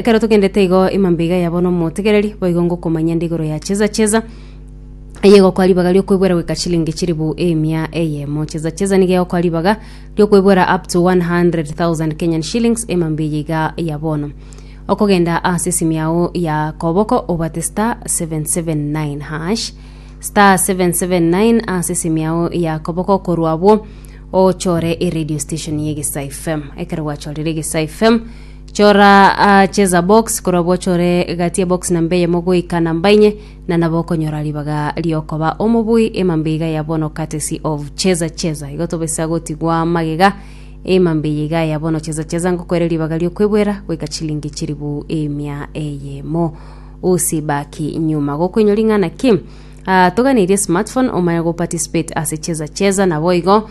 Ekero togendete igo ima mbiga yabo nomotegereri, boigo ngokomanyia nde igoro ya cheza cheza, eye egokoa ribaga riokwebwera goika chilingi chiribu emia eyemo. Cheza cheza nigo egokoa ribaga riokwebwera up to 100,000 Kenyan shillings ima mbiya iga ya bono. Okogenda ase esimi yao ya koboko obate star 779 hash star 779 ase esimi yao ya koboko korwa abwo ochore eradio station ya egesa fm ekero gwachorire egesa fm Chora aa cheza box korabwo ochore gati ebox namba eyemo goika namba inye na nabo okonyora ribaga riokoba omobui emambe iga ya bono courtesy of cheza cheza igo tobisa gotigwa magega emambe eye iga ya bono cheza cheza ngokoere ribaga riokwebwera goika chilingi chiribu emia eyemo usibaki nyuma gokoinywa ring'ana ki Ah, toganeirie smartphone omanye go participate ase cheza cheza nabo igo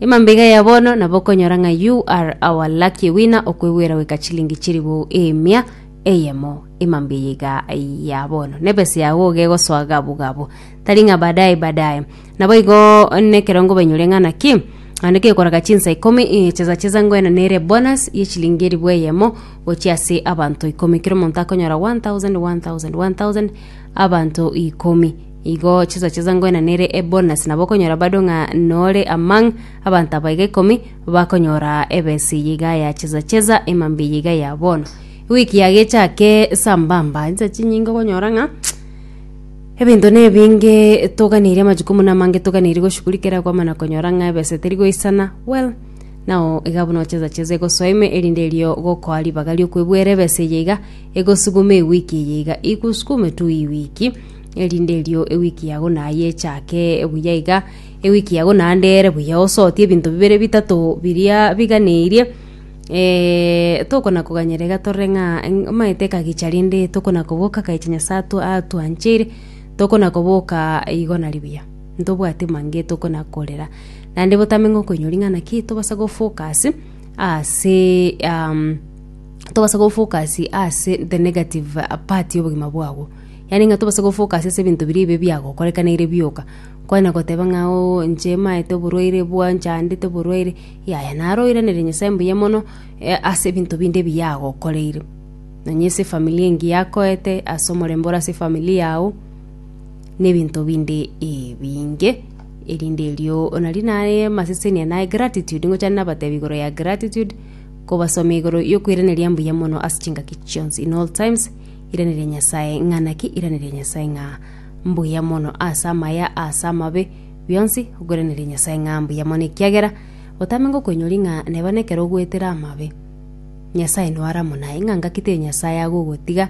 Emambaiga ya bono nabo okonyora ng'a you are our lucky winner okwegwera goika chilingi chiribou emia eyemo emambaiga ya bono nebesa yago iga egosoa gabu gabu tari ng'a baadaye baadaye naboigo nekerongo bainyore ng'a naki naende kegoraga chinsa ikomi eh, chesa chesa ngoena nere bonus ye chilingi eribu eyemo gochia ase abanto ikomi kero omonto akonyora 1000 1000 1000 abanto ikomi Igo chisacha iso ngoina nere ebonus, nabo okonyora bado ng'a nore amang' abanto aba iga ikomi bakonyora ebesa eye iga ya chisacha iso emambe eye iga ya bono. Ewiki yago echake sambamba, insa chinyinge okonyora ng'a ebinto nebinge toganeirie amajukumu namange toganeirie goshuguri kera kwamana konyora ng'a ebesa teri goisana, well nao iga buna chisacha iso egosoa ime erinde erio gokoa ribaga riokwebwera ebesa eye iga egosuguma ewiki eye iga ikusukume tu ewiki. erinde erio ewiki yago naye echake buya iga, ewiki yago naende ere buya osotie ebinto bibere bitato biria biganeirie, eh, tokona koganyera iga torore ng'a eng- omanyete ekagicha rende tokona koboka ekegicha Nyasae atwa- atwancheire, tokona koboka igo nari buya, ntobwati mange tokona korera. Naende botame ng'a okoinyora ring'ana ki tobasa go focus ase tobasa go focus ase the negative part ya obogima bwabo. Yaani ng'a tobase gofocus ase ebinto biria bibe biagokorekanire bioka. Kwanya goteba ng'a oo inche maete oborwaire bwa nchandete oborwaire, yaya naro oiranerie Nyasae mbuya mono ase ebinto binde ebi yagokoreire. Nonya ase efamiri engiya yakoete, ase omorembe ore ase efamiri yao, na ebinto binde ebinge. Erinde erio nari naye amasesenia naye gratitude, ngochande nabatebi igoro ya gratitude, kobasomia igoro yokoiraneria mbuya mono ase chingaki chionsi in all times. Iraneria Nyasae ng'a naki Iraneria Nyasae ng'a mbuya mono ase amaya ase amabe bionsi Okoiraneria Nyasae ng'a mbuya mono ekiagera otame ngokoinyori ng'a neba nekero ogoetera amabe Nyasae noare amo naye ng'a ngaki teri Nyasae agogotiga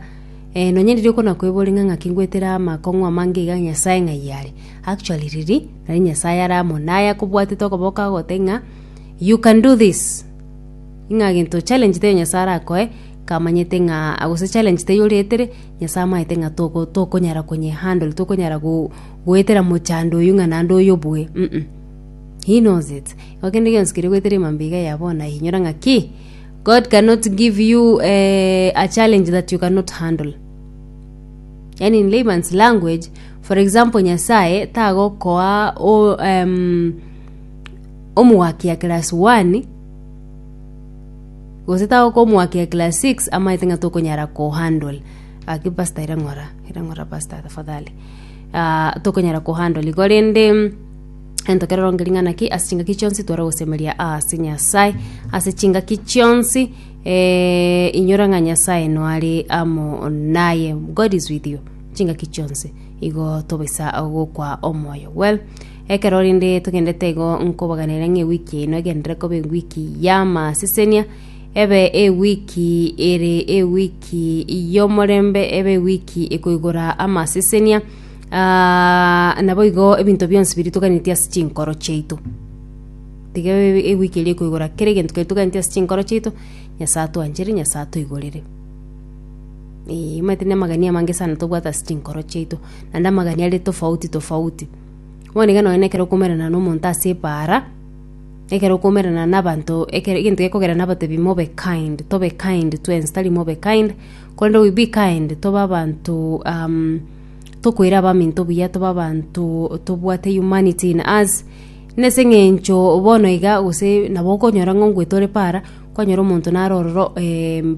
eh, nonya ndiri okonakoibori ng'a ng'aki ngoetera amakong'u amange iga Nyasae ng'a yare actually riri nari Nyasae are amo naye akobwatete okoboko agote ng'a you can do this ng'a gento challenge teri Nyasae arakoe Kamanyete ng'a gose challenge teiyo oretire, Nyasae amaete ng'a toko tokonyara konye handle, tokonyara go goetera mochando oyio ng'a naende oyobue uh uh. He knows it. Igo kende gionsi keria ogoetera emambia iga ya bono aye inyora ng'a ki? God cannot give you eh a challenge that you cannot handle. Yaani in layman's language, for example Nyasae tagokoa o em omogaki ya class one, Gose tagokomoakia class six amaete ng'a tokonyara kohandle. Gaki pastor ira ng'ora, ira ng'ora pastor tafadhali. Ah, tokonyara kohandle igo rende ento keroroge ring'ana ki ase chingaki chionsi tware gosemeria ase Nyasae ase chingaki chionsi eh, inyora ng'a Nyasae noare amo naye, God is with you, chingaki chionsi. Igo tobaisa gokwa omoyo. Well, Ekero rende togendete igo nkobaganera ng'a ewiki eye noegenderere koba ewiki y'amasesenia, ebe ewiki ere ewiki y'omorembe, ebe ewiki ekoigora amasesenia, aaah, naboigo ebinto bionsi biria toganeti ase chinkoro chiaito. Tiga ebe ewiki eria ekoigora kera egento keria toganeti ase chinkoro chiaito, Nyasae atwanchere, Nyasae atoigorere. Eeh omanyete na amagania amange sana tobwate ase chinkoro chiaito, naende amagania are tofauti tofauti. Mwanige nonya ekero okoumerana nomonto ase ebaara, ekero okoumerana na abanto ekero egento gekogera nabatebi mobe kind, tobe kind twensi tari mobe kind, korende we be kind tobe abanto tokoira abaminto buya, tobe abanto tobwate humanity in us, na ase eng'encho bono iga gose nabo okonyora ng'a ngoeta ore para, kwanyora omonto naro ororo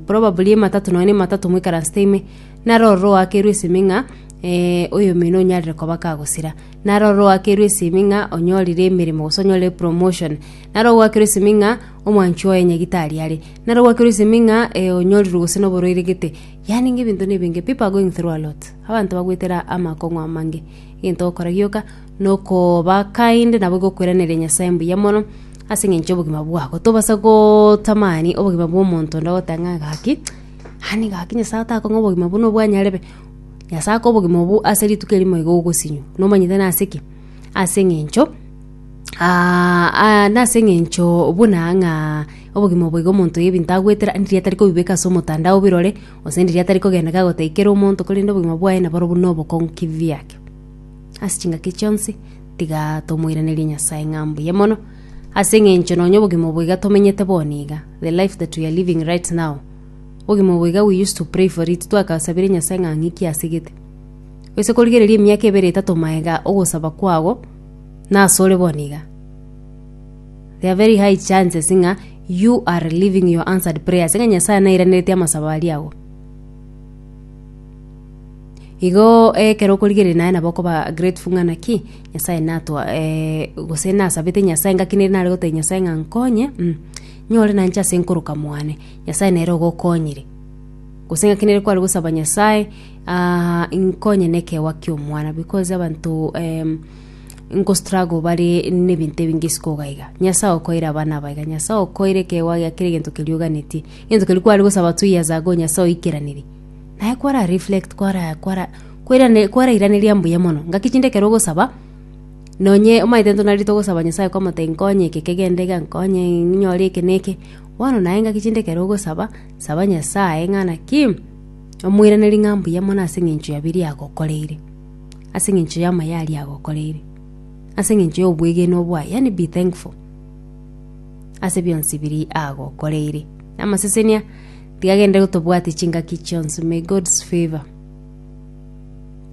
probably ematatu nonya na ematatu moikaransete ime, naro ororo oakerwe esimi ng'a. Ee, oyomino onyarire koba kagosira. Naro ore oakerwe esimi ng'a onyorire emeremo gose onyorire promotion. Naro ogoakerwa esimi ng'a omwanchi oye nyagitari are. Naro ogoakerwa esimi ng'a eh, onyorirwe gose noborwaire gete. Yaani ng'a ebinto nebinge. People are going through a lot. Abanto bagoetera amakong'u amange. Egento ogokora gioka, nokoba kind nabo gokweraneria Nyasaye mbuya mono, ase eng'encho yobogima bwabo. Tobasa gotamani obogima bwa omonto onde ogoteba ng'a gaki, yaani gaki Nyasaye otakong'a obogima buna obwanyarebe. Nyasae aka obogima obwo ase rituko erimo iga ogosinywa. Nomanyete nase ki? Ase eng'encho nase eng'encho buna ng'a obogima obo iga omonto ebinto agoetera ndiri atari kobibeka ase omotandao obirore, gose ndiri atari kogenda kagoteikera omonto korende obogima bwaye nabo orobu na obokong'u kivyake. Ase chingaki chionsi, tiga tomoiranerie Nyasae ng'a mbuya mono, ase eng'encho nonya obogima obo iga tomenyete bono iga, the life that we are living right now. Obogima obo iga we used to pray for it, twagasabire Nyasae ng'a ng'iki asegete. Gose korigereria emiaka ebere etato magega ogosaba kwao nase ore bono iga. There are very high chances ng'a you are living your answered prayer ase ng'a Nyasae nairaneretie amasabo aria ago. Igo ekero okorigereria naye nabo okoba grateful ng'a naki Nyasae natwa gose nasabete Nyasae ngaki nere nare gotebia Nyasae ng'a nkonye, nyore nanche ase nkoroka mwane. Nyasae nere ogokonyire. Gose ng'aki nere kware gosaba Nyasae, ah, inkonye nekeegwa ki'omwana, because abanto em, nko struggle bare nebinto ebinge isiko iga iga. Nyasae okoire abana aba iga, Nyasae okoire ekeegwa gia kera egento keria oganetie. Egento keria kware gosaba two years ago Nyasae oikeranirie. Naye kwara reflect, kwara kwara kwerane- kwarairaneria mbuya mono. Ngaki chinde ekero ogosaba, nonye omanyete intwe nari togosaba Nyasae kwamotebia nkonye eke kegende iga, nkonye ninyore eke na eke. Bono naye ngaki chinde ekero ogosaba, saba Nyasae ng'a naki omoiranerie ng'a mbuya mono ase engencho ya biria agokoreire, ase engencho y'amaya aria agokoreire, ase engencho y'obwegenwa bwaye, yaani be thankful, ase bionsi biria agokoreire. Amasesenia tiga agende gotobwatia chingaki chionsi. May God's favour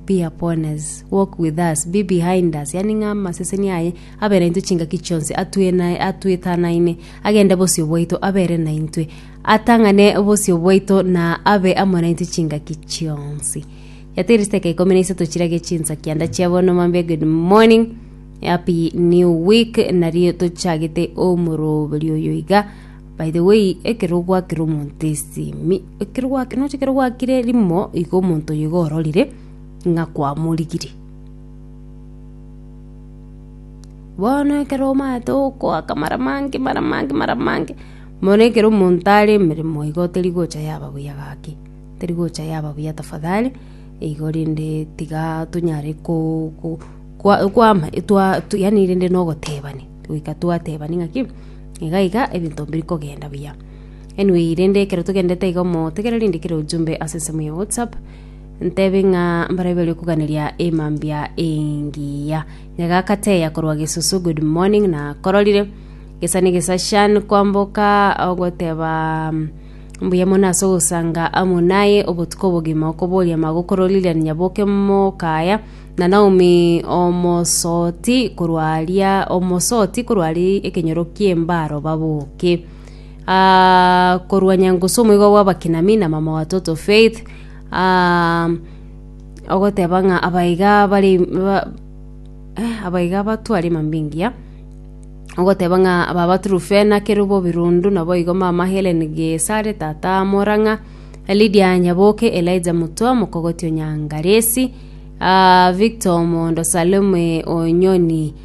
be upon us, walk with us, be behind us, yaani ng'a amasesenia aye abe naintwe chingaki chionsi, atue naye atwetanaine, agende bosio bwaito, abere naintwe, atang'ane bosio bwaito, na abe amo naintwe chingaki chionsi. Yatiri steka ikomi na isato chirage chinsakia ndachia bono mambia good morning happy new week nario tochagete omoroberi oyo iga by the way ekero ogwakire omonto esimi ekero gwak- noche ekero gwakire rimo iga omonto oyo iga ororire ng'a kwamorigirie Bono ekero omanyete okoaka mara amange mara amange mara amange, bono ekero omonto are emeremo igo teri gocha yaba buya gaki, teri gocha yaba buya tafadhali, igo rende tiga tonyare ko ko kwa kwama twa yaani rende na ogotebania, goika twatebania ng'aki iga iga ebinto biri kogenda buya. Anyway rende ekero togendete iga omotegereri ndikere ujumbe ase ensemo ya whatsapp. Ntebi ng'a mbaria baria koganeria emambia engiya. Nyagakateya korwa gesusu good morning na kororire. Gesani gesashan kwamboka ogoteba mbuya mono ase ogosanga amo naye obotuko obogima okoboria magokoro Lilian Nyaboke mokaya na Naomi omosoti korwa aria omosoti korwa aria ekenyoro kiembaro baboke. ah, korwa nyangusu omoigwa bw'abakina mi na mama wa toto faith ah, ogoteba ng'a abaiga bari ba- eh, abaiga batwari mambingia ogoteba ng'a baba turufena kerubo birundu naboigo mama helen gesare tata morang'a lidia nyaboke elija motwa mokogoti onyangaresi ah, victor omondo salome onyoni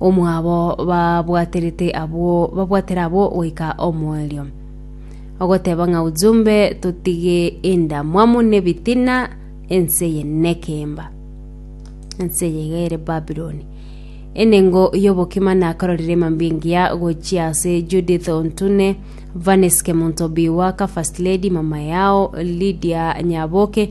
omwabo babwaterete abwo babwatere abwo goika omoerio. Ogoteba ng'a ujumbe totige endamwamu nebitina ense eye nekemba. Ense eye iga ere Babiloni. Enengo y'obokima nakororire mambia engiya gochia ase Judith Ontune, Vanes Kemonto Biwaka, First Lady, mama yao Lydia Nyaboke,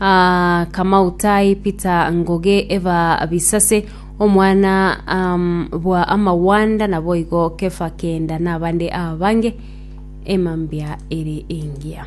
Aa Kamau tai Peter Ngoge eba Bisase omwana um, bwa amawanda naboigo Kefa Kenda nabande abange emambia ere engiya